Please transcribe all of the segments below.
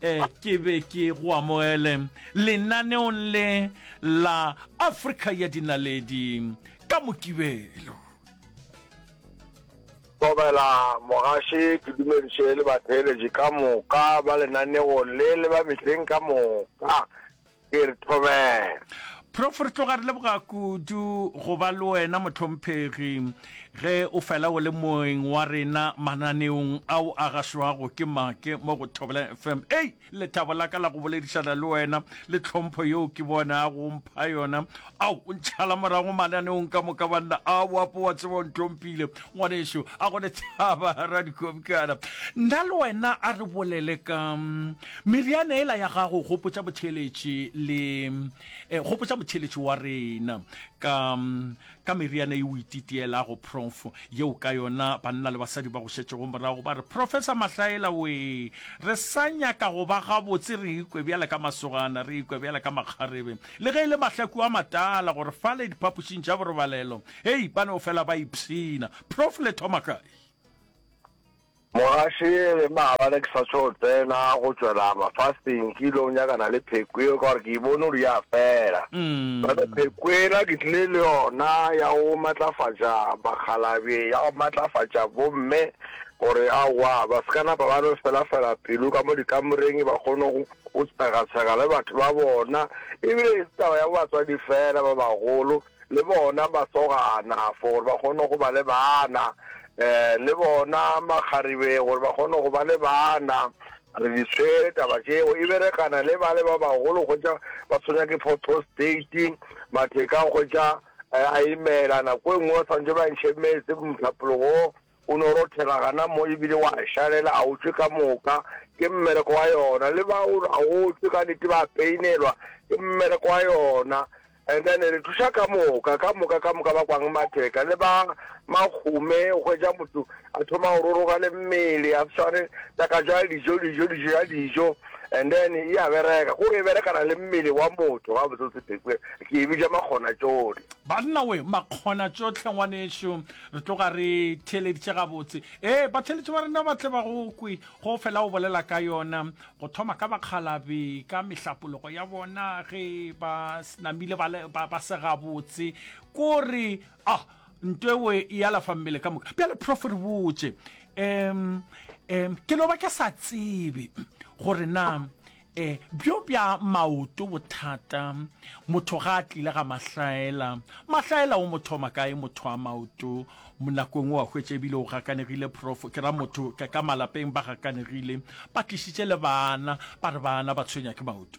Ke be ke go amogele lenaneong le la Afrika ya Dinaledi ka Mokibelo. Kobela mogaše ke dumediše le batheeletši ka moka ba lenaneong le le ba mehleng ka moka. ke re thobela. Prof. Re tloga re leboga kudu go ba le wena mohlomphegi ge o fela o le moeng wa rena mananeong ao a gašwago ke make mo go Thobela FM. Ei, lethabo la ka la go boledišana le wena le tlhompho yeo ke bonago o mpha yona Ao, o ntšhala morago mananeong ka moka, banna. A o apo wa tseba o ntompile, ngwanešu. A go le tshaba, radikobikana. Nna le wena a re bolele ka meriana ela ya gago, gopotša botheeletši le, eh, gopotša motheeletši wa rena, ka, ka meriana e o ititielago, prof, yeo ka yona banna le basadi ba go šetšego morago ba re, Professor Mahlaela-wee, re sa nyaka go ba gabotse, re ikwe bjale ka masogana, re ikwe bjale ka makgarebe. Le ge e le mahlaku a matala gore fale diphapošing tša borobalelo, hei, ba no fela ba ipshina. Prof. Le thoma kae? Mogaši, Ge maabane ke sa tšo tsena go tšwela mafasteng, ke ile go nyakana le pheko yeo ka gore ke e bone gore ya fela. Bjale pheko ela ke tlile le yona ya go matlafatša bakgalabje, ya go matlafatša bomme gore aowa ba se ka napa ba no felafela pelo ka mo dikamoreng, ba kgone go Go tshegatshega le batho ba bona e bile ga se taba ya batswadi fela, ba bagolo le bona ba sogana for gore ba kgone go ba le bana, le bona makgaribeng gore ba kgone go ba le bana. Re di tshwere taba tšeo, e berekana le bale ba bagolo hwetša ba tshwenya ke photrostate, matheka hwetša a imela, nako e nngwe ba swantšwe ba ntšhe metse mohlapologong. O no rothela gana mo e bile wa šalela, a o tšwe ka moka, ke mmereko wa yona. Le ba o re a o tšwe ka nete ba peinelwa, ke mmereko wa yona. And then re thuša ka moka, ka moka, ka moka ba kwang matheka le ba makgume, o hwetša motho a thoma go roroga le mmele, a sware taka jwa dijo, dijo, dijo ya dijo, and then e a bereka, kore e berekana le mmele wa motho gabotse, o se phekwe, ke e bitša makgonatšohle. Banna we, makgonatšohle ngwanešu. Re tloga re theeleditše gabotse. Ee, batheeletši ba rena ba tle ba go kwe. Go fela o bolela ka yona, go thoma ka bakgalabe, ka mehlapologo ya bona ge ba namile ba, ba, ba se gabotse. Ko re, ah, nto ewe e alafa mmele ka moka. Bjale, Prof, re botše. Um, um, ke no ba ke sa tsebe gore na E, bjo bja maoto bothata. Motho ga a tlile ga Mahlaela. Mahlaela o mo thoma kae motho a maoto? Nako engwe wa hwetša ebile o gakanegile prof, ke ra motho ka ka malapeng ba gakanegile, ba tlišitše le bana, ba re bana ba tshwenya ke maoto.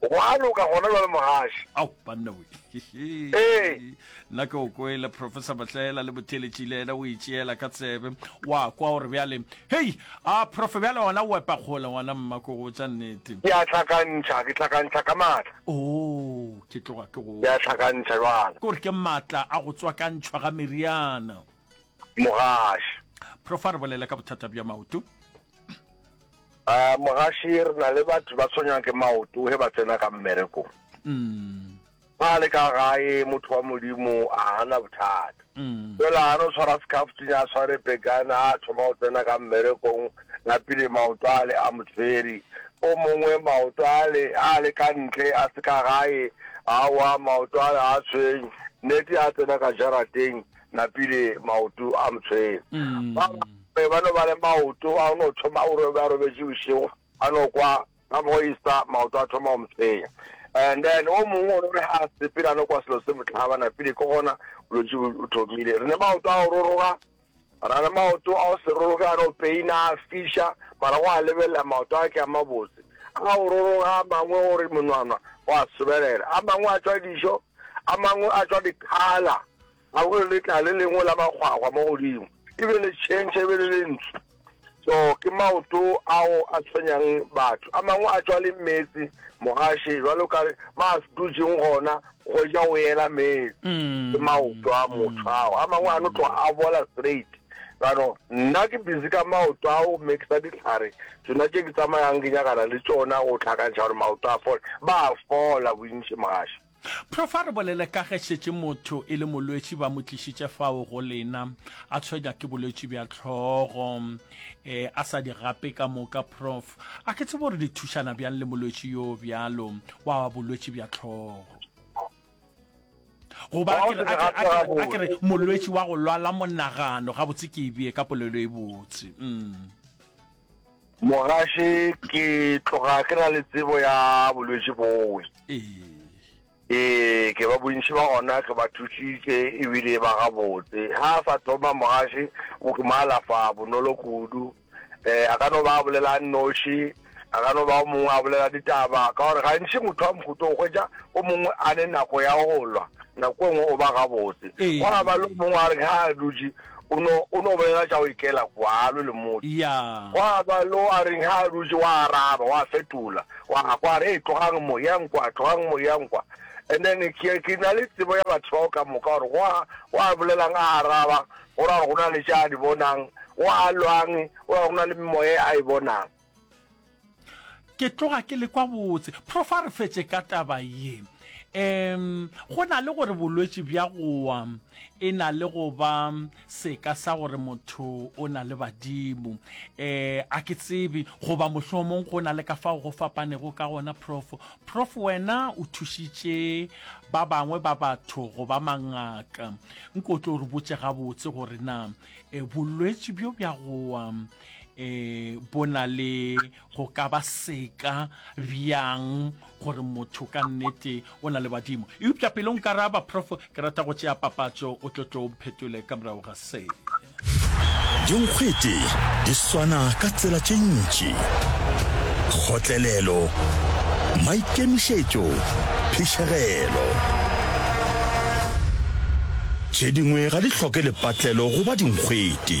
Go a loka gona bjale mogaši. Ao, banna we. Ee. Nna ke o kwele, Professor Batlaela le botheletši le yena o e tšeela ka tsebe. Wa kwa gore bjale, Hei, a Prof bjale gona o epa kgole ngwana mma ko go tša nnete. Ke a hlakantšha, ke hlakantšha ka matla. Oo, ke tloga ke go. Ke a hlakantšha bjale. Ke gore ke matla a go tswakantšhwa ga meriana. mogaši profa re bolele ka bothata bja maoto a mogaši re na le batho ba tshwenyang ke maoto he ba tsena ka mmereko mm. ba le ka gae motho wa modimo a ana bothata mm. jela mm. a no tshwara sekhafutinya a tshware pekana a thoma go tsena ka mmerekong napile maoto a le a motshweri o mongwe maoto a le a le ka ntle a se ka gae a wa maoto a le a tshweng nete a tsena ka jarateng napile maoto a mtshweu ba bangwe ba no ba le maoto a no thoma o robe a robetše bošego a no kwa ka mo isa maoto a thoma go mtshwenya and then o mongwe o no re a sepela a no kwa selo se motlhaba napile ke gona bolwetse bo thomile re ne maoto a go roroga ra le maoto a go se roroge a no peina a fisha mara go a lebelela maoto a ke a mabotse a go roroga a mangwe gore monwana go a sobelela a mangwe a tswa dišo A mangwe a tšwa diphala, a go le tla le lengwe la makgwakgwa mo godimo, e be le tšhentšha e be le lentsu. So, ke maoto ao a tshwenyang batho. A mangwe a tšwa le meetse, mogaše, jwalo ka ma a dutšeng gona, go ja o ela meetse. Ke maoto a motho ao. A mangwe a no tloga a bola straight. Jaanong nna ke busy ka maoto a go mix-a ditlhare tsona tše ke tsamayang ke nyakana le tsona go tlhakantšha gore maoto a fole, ba a fola bontši mogaša. Prof. A re bolele ka ge šetše motho e le molwetši ba mo tlišitše fao go lena a tshwenywa ke bolwetši bja tlhogo e a sa di gape ka moka. Prof. A ke tsebe gore le thušana bjang le molwetši yo bjalo wa bolwetši bja tlhogo? goba a kere molwetši wa go lwala monagano gabotse ke ebee ka polelo e botse mm. mogaše ke tloga ke na le tsebo ya bolwetši bowe ee ke ba bontši ba gona ke ba thusitse ebile ba gabotse ga a sa thoma mogaše o ke maalafa bonolo kudu um a ka no ba a bolela a nnoši, a ka no ba o mongwe a bolela ditaba, ka gore gantši motho wa mohuto o hwetša o mongwe a ne nako ya go lwa, nako e nngwe o ba gabotse. Go a ba le o mongwe a re ga a dutše o no o no bolela tša go ikela kwalo le motho. Go a ba le o a reng ga a dutše wa araba, wa fetola, wa a kwa re e tlogang mo yang kwa, tlogang mo yang kwa. And then ke ke na le tsebo ya batho bao ka moka gore go a go a bolelang a araba, O ra go na le tše a di bonang, o a lwang, o ra go na le memoya e a e bonang. Ke tloga ke le kwa botse. Prof a re fetše ka taba ye. Um go na le gore bolwetši bja go wa e na le go ba seka sa gore motho o na le badimo. Um a ke tsebe goba mohlomong go na le ka fao go fapanego ka gona prof Prof wena o thušitše ba bangwe ba batho go ba mangaka nko o tlo re botse gabotse gore na e, bolwetši bjo bja gowa um e, bo na le go ka ba seka bjang gore motho ka nnete o na le badimo eupša pele o nkaraba prof Ke rata go tšea papatšo o tlo tlo mphetole ka morago ga se. Dinkgwete di swana ka tsela tše ntši, kgotlelelo, maikemišetšo, phišegelo. Tše dingwe ga di hloke lepatlelo go ba dinkgwete.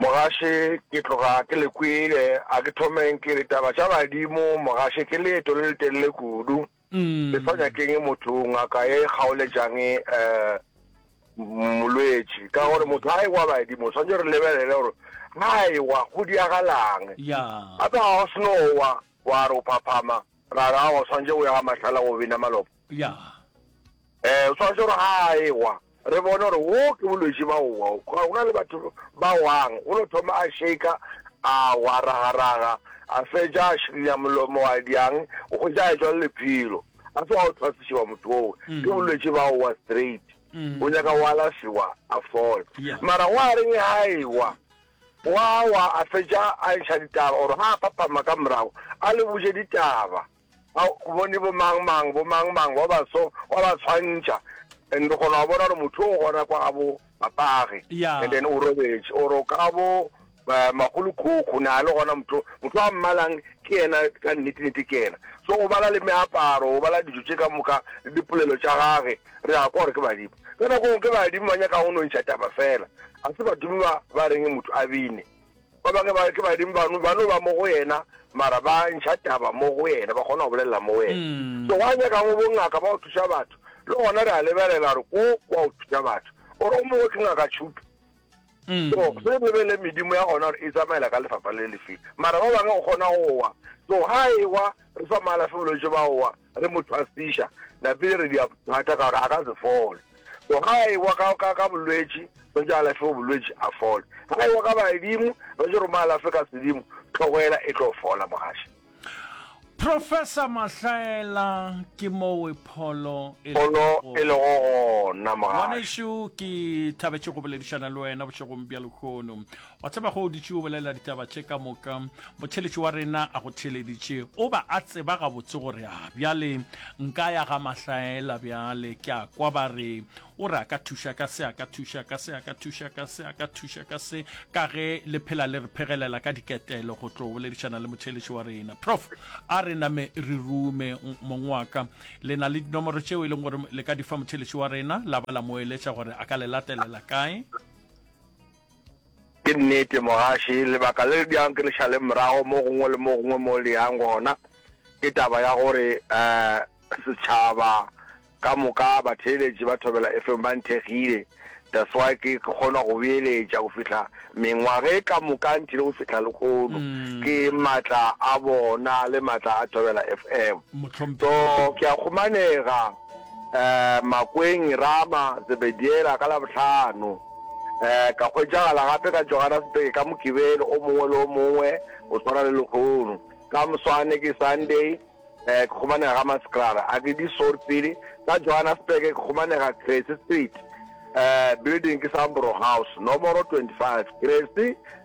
Mogaše ke tloga ke le kwele, a ke thomeng ke re taba tša badimo mogaše ke leeto le letelele kudu, le sa nyakeng motho ngaka ye kgaoletšang eh, molwetši ka gore motho a ewa badimo tshwanetse re lebelele gore a ewa go diagalang gape ga o senowa wa re o phaphama ra ra o tshwanetse o ya ga matlhala go bina malopo Ya. Eh, o swanetše gore ga a ewa, re bone gore wo ke bolwetši ba go wa. Go na le batho ba wang, o no thoma a shaker, a wa ragaraga, a fetša a širinya molomo wa diang, o hwetša a etšwa le lephelo. A se wa o thwasišiwa motho woo, mm. ke bolwetši ba go wa straight. Mm. O nyaka go alafiwa a fola. Mara go a reng ha ewa, wa wa a fetša a ntšha ditaba, gore ga a phapama ka morago, a le botše ditaba. Ga o bone bomangmang, bomangmang ba baso ba ba swantšha, and o kgona go bona gore motho o gona kwa ga bo papage, Ya. and then o robetše, or o ka bo ba magolokhokho, na le gona motho, motho a mmalang ke yena ka nnete-nnete ke yena. So o bala le meaparo, o bala dijo tše ka moka, le dipolelo tša gage, re a kwa gore ke badimo. Ka nako engwe ke badimo ba nyakago go nontšha taba fela, ga se badimo ba ba reng motho a bine. Ba bangwe ba ke badimo bano ba no ba mo go yena mara ba ntšha taba mo go yena ba kgona go bolelela mo wena mm. so wa nyaka go bongaka ba go thuša batho le gona re a lebelela gore ko kwa go thuša batho ore o mongwe ke ngaka tšhuto mm. so se re lebelele medimo ya gona gore e tsamaela ka lefapha le lefeng mara ba bangwe go kgona go wa so ga e wa re sa maalafe bolwetse ba wa Re mo tshwasiša, napile re dia thata ka gore a ka se fole. So ga a ewa ka, ka, ka bolwetši, re tšo alafiwa bolwetši a fole. Ga a ewa ka badimo, re tšo re mo alafe ka sedimo, tlhogoela e tlo fola, mogaši. Professor Mahlaela, ke mowe pholo e lego Pholo e lego gona, mogaši. Ngwanešu, ke thabetše go boledišana le wena bošegong bja lehono. Wa tseba ge o dutše o bolela ditaba tše ka moka, motheeletši wa rena a go theeleditše, o ba a tseba gabotse gore a bjale nka ya ga Mahlaela, bjale ke a kwa ba re o re a ka thuša ka se, a ka thuša ka se, a ka thuša ka se, a ka thuša ka se, ka ge le phela le re phegelela ka diketelo go tlo boledišana le motheeletši wa rena. Prof, a re name re rume mong wa ka, le na le dinomoro tšeo e leng gore le ka di fa motheeletši wa rena, la ba la mo eletša gore a ka le latelela kae? Ke nnete, mogaši. Lebaka le le dirang ke le šale morago mo gongwe le mo gongwe mo le yang gona ke taba ya gore um setšhaba ka moka, batheeletši ba Thobela FM ba nthekgile. That's why ke kgona go beeletša go fihla mengwaga e ka moka nthile go fihla lehono. Ke maatla a bona le maatla a Thobela FM. So ke a kgomanega. um Makweng, Rama, Zebediela ka Labohlano, um ka hwetšagala gape ka Johannesburg ka Mokibelo o mongwe le o mongwe o tshwana le lehono. Ka moswane ke Sunday, um ke kgomanega ga Maskrara a ke di sort pele. Ka Johannesburg ke kgomanega Crazy Street, um building ke Sambro House, nomoro 25. Crazy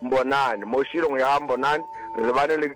Mbonani. Mo širong ya Mbonani re lebane le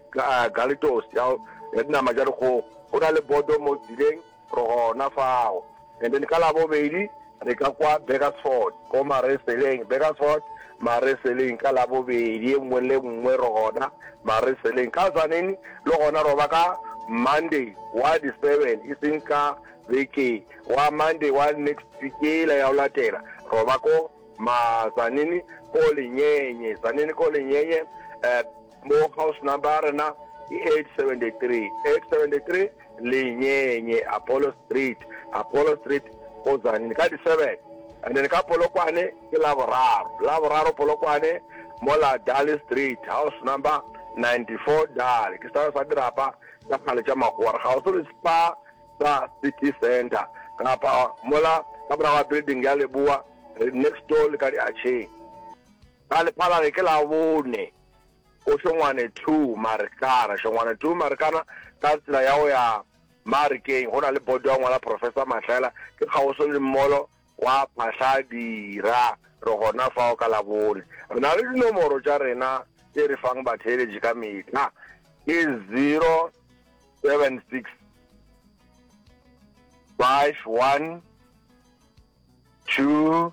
Galitos ya ya dinama tša dikgogo, go na le bodo mo tseleng, re gona fao. And then ka Labobedi re ka kwa Burgersfort ko Mareseleng, Burgersfort, Mareseleng, ka Labobedi e nngwe le nngwe re gona Mareseleng. Ka Tzaneen le gona roba ka Monday wa di seven, e seng ka beke, wa Monday wa next week yela ya go latela roba ko. Ma Zanini ko Lenyenye. Zanini ko Lenyenye. Eh, mo house number ya rena ke 873. 873 Lenyenye, Apollo Street. Apollo Street ko Zanini. Ka di-seven. And then ka Polokwane ke la boraro. La boraro Polokwane mo la Dali Street. House number 94 Dali. Ke sa sa dirapa tsa kgale tša magora. Ga o se le spa sa City Centre kapa mola ka morago ga building ya Leboa next door le ka diatšheng. Ka lephalage ke la bone ko Shongwane two Marikana, Shongwane two Marikana ka tsela ya go ya Marikeng go na le bodo ya ngwala Professor Mahlela ke kgauswi le mmolo Gwa phahla dira, re gona fao ka Labone. Re na le dinomoro tša rena tše re fang batheeletši ka mehla, ke 076 51 22.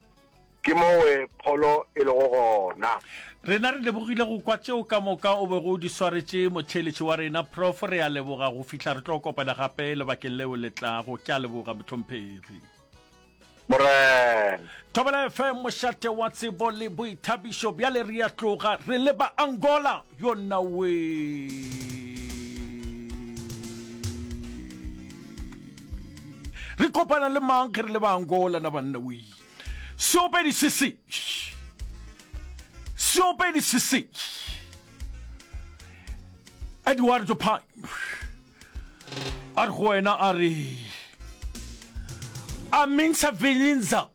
Ke mowe pholo e lego gona. Rena re lebogile go kwa tšeo ka moka o bego o di swaretše, motheeletši wa rena Prof. Re a leboga go fihla re tlo kopana gape lebakeng leo le tlago. Ke a leboga, mohlomphegi. Morena. Thobela FM, mošate wa tsebo le boithabišo. Bjale re a tloga re leba Angola. Yo nna wee. Re kopana le mang ge re le ba Angola na banna wee. Seopedi se se. Seopedi se se. Eduardo Pine. A re go wena a re. A mintsha vilinza.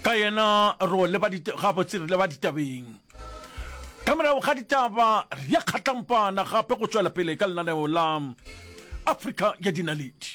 Ka yena ro le ba ditaba tse re le ba ditabeng. Ka morago ga ditaba, re ya kgatlampana gape go tšwela pele ka lenaneo la Afrika ya Dinaledi.